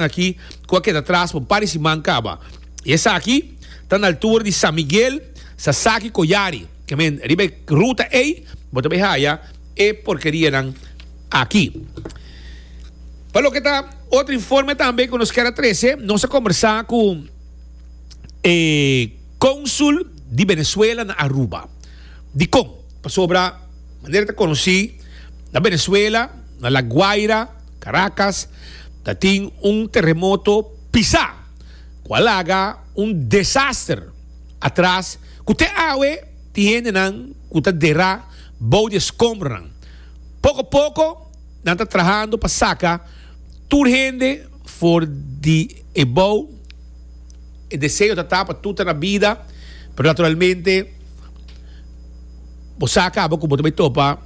nan aki ku a keda tras pa un par di siman kaba. I esaki ta na altura di San Miguel, Sasaki, Coyari. Ke men, riba e ruta ei bo ta bai haya e porkerianan aki. Pa loke ta otro informe tambe ku nos kier a trese, nos a kombersá ku e konsul di Venezuela na Aruba, dikon pasobra manera ta konosí na Venezuela, na La Guaira, Caracas ta tin un teremoto pisá ku a laga un desaster atras ku te awe tin hendenan ku ta derá bou di e skombronan. Poko poko nan ta trahando pa saka tur hende for di e bou, e deseo ta ta pa tur ta na bida pero naturalmente bo sa kaba ku bo ta bai topa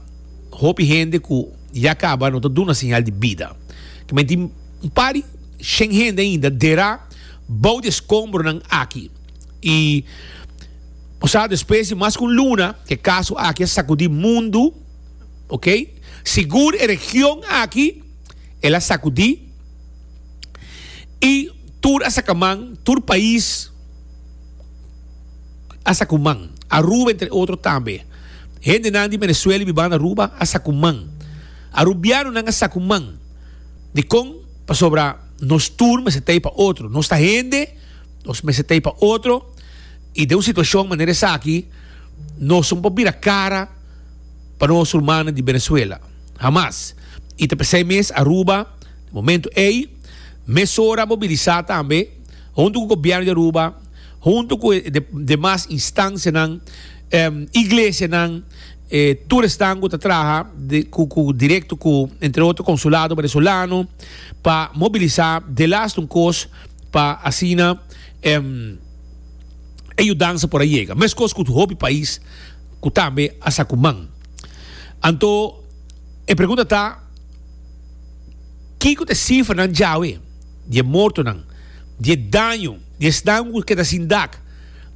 hopi hende ku. Ya kaba no ta duna señal di bida. Kimen tin un par di shen hende ainda dera bou di e skombronan aki. I bo sa despues di mas ku un luna ku e kaso aki a sakudí mundu, okay, sigur e region aki el a sakudí i tur a saka man, tur pais. a sa ku man. Aruba entre otro tambe. Hendenan di Venezuela i bibanda Aruba a sa ku man. Arubianonan a sa ku man. Dikon? Pasobra nos tur mester ta ei pa otro. Nos ta hende, nos mester ta ei pa otro i den un situashon manera esaki nos no por bira kara pa nos rumannan di Venezuela. Hamas! I ta p'esei mes Aruba na momentu ei mesora a mobilisá tambe huntu ku gobièrnu di Aruba. huntu ku e demas instansianan, iglesianan, e tur esnan ku ta traha ku direkto ku entre otro Konsulado Venezolano pa mobilisá de last un kos pa asina e yudansa por a yega. Meskos ku hopi pais ku tambe a sa ku man. Anto e pregunta ta, Kiko ta e sifranan djawe di e mortonan, di e daño? di esnan ku keda sin dak,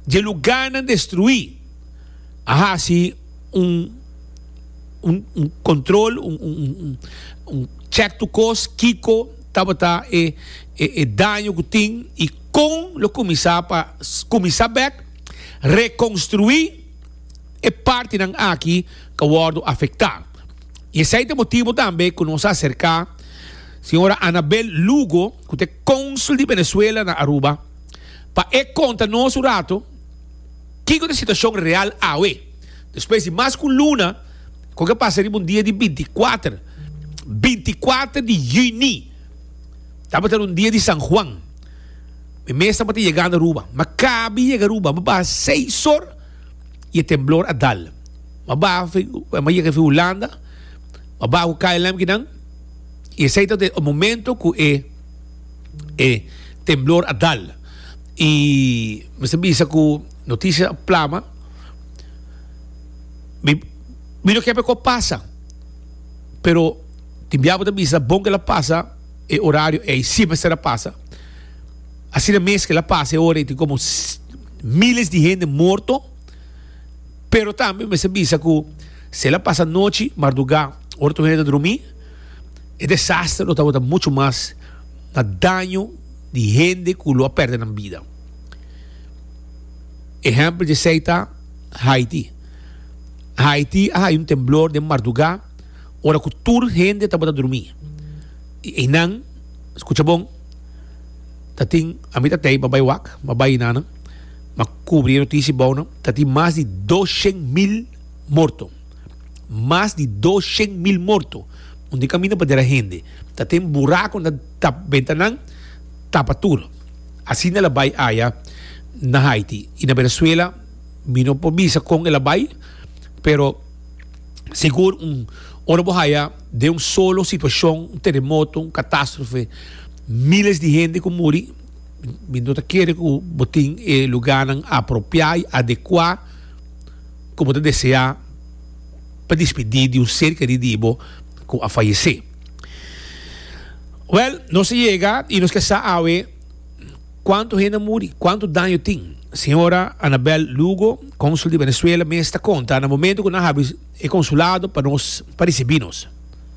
dje lugánan destruí, a hasi un un kontrol, un chèk tu kos, kiko tabata e e daño ku tin i kon lo kuminsá pa kuminsá bèk rekonstruí e partinan aki ku a wòrdu afektá. I esei ta e motibu tambe ku nos a aserká señora Anabel Lugo, cu ta e Cónsul di Venezuela na Aruba, pa e conta nos un rato kico ta e situacion real awe, despues di mas cu un luna cu ke pasa riba un dia di binticuater, binticuater di Juni, tabata un dia di San Juan, mi mes tabata yegando Aruba, mi a cabi yega Aruba, mi a baha seis or y e temblor a dal, mi a baha, mi a yega fin Hulanda, mi a baha cu KLM kinan. Y esey ta den e momento cu e e temblor a dal. Y mi ta bisa cu noticia a plama, mi mi no kier pa e cosa pasa, pero tin bia cu ta bisa ta bon cu el a pasa e horario ey, si mester a pasa. Asina mes cu el a pasa e ora ey tin como miles di hende morto. Pero tambe mester bisa cu si el a pasa nochi mardugá ora tur hende ta drumí, e desaster lo tabata mucho mas na daño di hende cu lo a perde nan bida. Ehempel djesei ta Haiti. Haiti a haya un temblor den mardugá ora cu tur hende tabata drumí. I einan, scucha bon, ta tin, ami ta tey, babay wak, babay nanan. Ma kubri e notisi bou nan, ta tin mas di doshen mil morto. Mas di doshen mil morto. Un di kaminda pader a hende. Ta ten burako na tap bentanan, tapa tur. Asina el a bai aya na Haiti. I na Venezuela mi no por bisa kon el a bai, pero sigur un ora bo haya den un solo situashon, un teremoto, un katastrofe, miles di hende ku muri. Mi no ta kere ku bo tin e lugánan apropiá i adekuá ku bo ta deseá pa dispidí di un ser kerí di bo ku a fayesé. Wèl, nos a yega i nos ke sa awe kuantu hende a muri, kuantu daño tin. Señora Anabel Lugo, kónsul di Venezuela mes ta konta na momentu ku nan habi e konsulado pa nos pa risibí nos.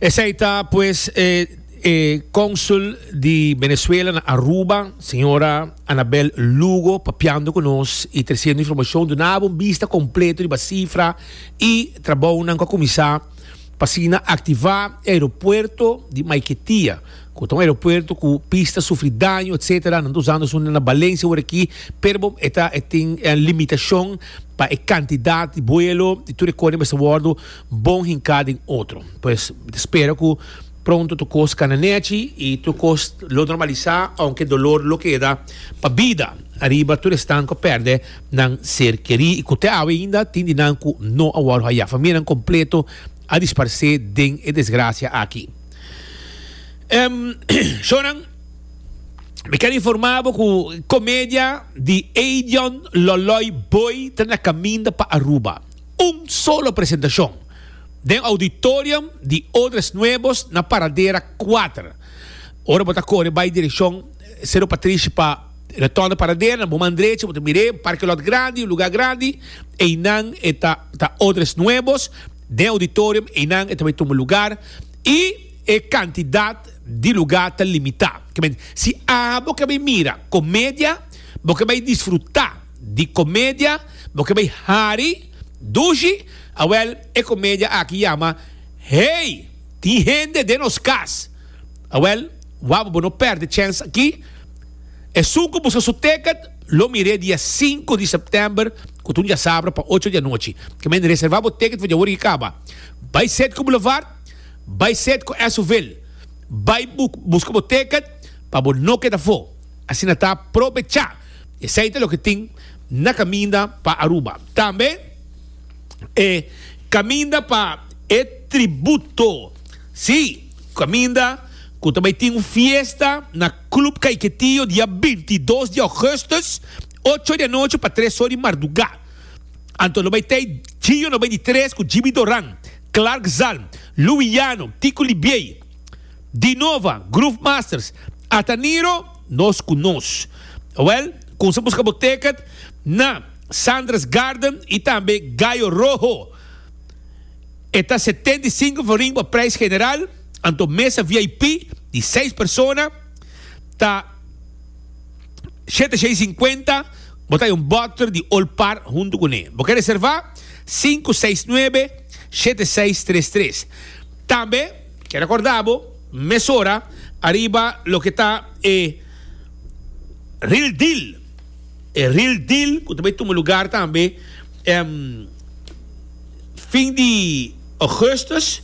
Esei ta pues e e Consul di Venezuela na Aruba, Señora Anabel Lugo papiando cu nos y treciendo informacion. Dunaba un bista completo riba cifra y trabounan cu a cuminsa pa asina activa e aeropuerto di Maiquetia, cu ta un aeropuerto cu pista sufri daño etcetera. Nan ta usando asunda na Valencia ora aki, pero e ta e tin e limitacion pa e cantidad di vuelo y tur e cosa mester wordo. Bon hinká den otro. Pues mi ta spera ku pronto tur kos kana nèchi i tur kos lo normalisá, ounke dolor lo keda pa bida ariba tur esnan ku a pèrdè nan ser kerí i ku te awe ainda tin di nan ku no a wòrdu hayá. Famianan kompleto a disparsé den e desgrasia aki. Shownan, mi ker informá bo ku komedia di Eidion Lòlòi Boi ta na kaminda pa Aruba. Un solo presentacion den auditorium di Odres Nuevos na Paradera kuater. Ora bo ta kore bai direccion Cerro Patrishi pa retorno Paradera, na bo man drecha bo ta mira e parke lot grandi, un lugar grandi, einan e ta ta Odres Nuevos den auditorium, einan e ta bai tuma lugar y e cantidad di lugar ta limita. Kibè si abo ke bai mira comedia, bo ke bai disfruta. di comedia bo ke bay hari dushi a wel e comedia aki yama hey tin hende den nos cas a wel waba bo no perde chens aki esun cu buska su ticket lo mire dia sinku di september cu ta un diasabra pa ocho di anochi ke men reserva bo ticket for di awor y caba bay set cu boulevard bay set cu esuville bay buska bo ticket pa bo no keda for asina ta probecha. Esei ta loke tin na kaminda pa Aruba. Tambe e kaminda pa e tributo. Sí, kaminda ku ta bai tin un fiesta na Club Caiquetío dia binti i dos di Augustus, ocho di anochi pa tres or di mardugá. Anto lo bai t'ei Gio no bai di tres ku Jibi Doran, Clark Zalm, Louis Llano, Tico Libiey, Dinova, Groove Masters, Ata Niro, Nos Ku Nos. Wèl, kumsa buska bo teket na Sandra's Garden i tambe Gallo Rojo. E ta setenta i sinku florin pa preis general, anto mesa VIP di seis persona ta shete shei sinkuenta, bo ta yon bòter di Old Par huntu kuné. Bo ke reservá? Sinku seis nuebe shete seis tres tres. Tambe ke rekorda bo mesora ariba loke ta e Real Deal, e Real Deal ku ta bai tuma lugar tambe fin di Augustus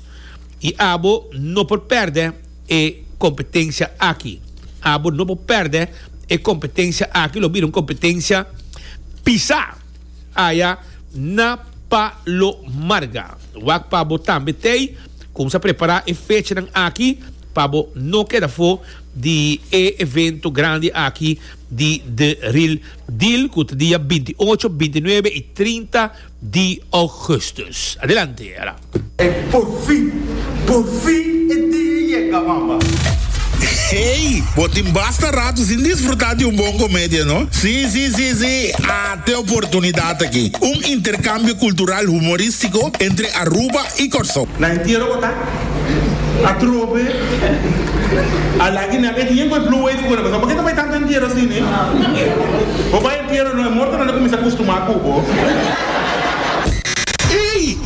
i abo no por pèrdè e kompetensia aki, abo no por pèrdè e kompetensia aki, lo bira un kompetensia pisá. aya na Palo Marga. Wak pa bo tambe t'ey kumsa prepara e fechanan aki pa bo no keda fo di e evento grandi aki di The Real Deal ku ta dia binti ocho, binti nuebe i trinta di Ougustus. Adelante. Porfin! Porfin e dia a yega, mama! Hey! Bo tin basta rato sin disfruta di un bon comedia, no? Si, si, si, si! Ata e oportunidad aki! Un intercambio cultural humoristico entre Aruba y Corsou. Na entiero bo ta? Atrobe! A laki nan e dia cu e blue wave cuna, pasobra bo ke ta bay tanto entiero así, ne? Bo bay entiero no, e mortonan ta cuminsa custuma cu bo. Hey!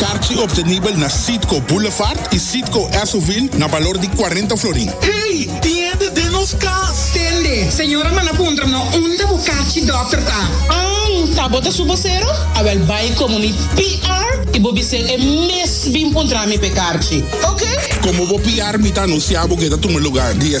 Karchi obtenibel na Citgo Boulevard y Citgo Esso-ville na balor di cuarenta florin. Ey, tin hende den nos cas! Tende, señora a manda puntra no unda bo karchi dokter ta. Ang, ta bo ta su bosero? Awel bay como mi PR y bo bis'el e mes bin puntra mi p'e karchi. Oke? Como bo PR mi ta anuncia bo ke ta tuma lugar di e